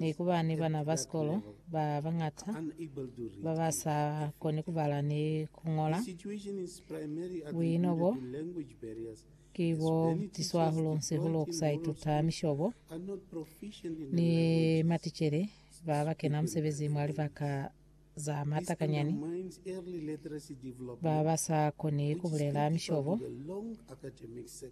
Neku ba ni bana ba sikolo ba bañata ba ba sa koni ku bala ni ku ñola. Buino bo ki bo butiswa hahulu-nsi-hulu ku sa ituta mishobo ni maticele ba ba kena musebezi mwa libaka za matakanyani, ba ba sa koni ku bulela mishobo.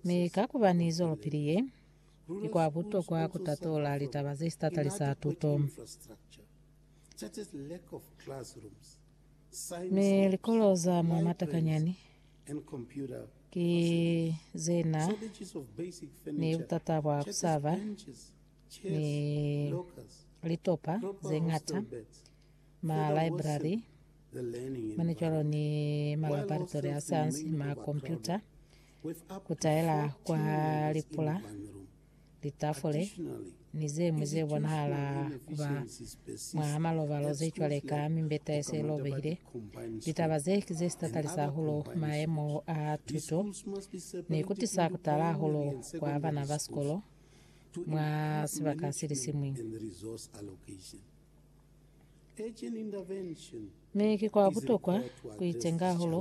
Mi ka ku ba ni zwelopili ye, Ki kwa butokwa ku tatola litaba ze si tatalisa tuto. Mi likolo za mwa matakanyani ki ze na ni butata bwa ku sa ba ni litopa ze ñata, malibrari, mane cwalo ni malaboratori a sayansi, makompyuta, ku taela kwa lipula, litafule, ni ze ñwi ze bonahala ku ba mwa malobalo ze cwale ka mimbeta ye se lobehile. Litaba ze ki ze si tatalisa hahulu maemo a tuto ni ku tisa ku tala hahulu kwa bana ba sikolo mwa sibaka se li siñwi. Mi ki kwa butokwa ku itenga hahulu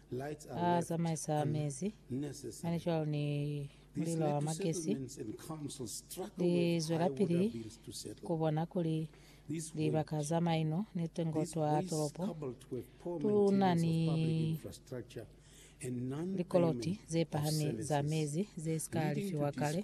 a zamaisa mezi, mane cwalo ni mulilo wa magesi, li zwelapili ku bona kuli libaka za maino ni tengo twa tolopo tu na ni likoloti ze pahami za mezi ze si ka alifiwa kale.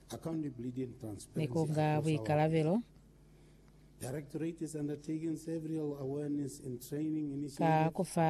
ni ku nga buikalabelo ka ku fa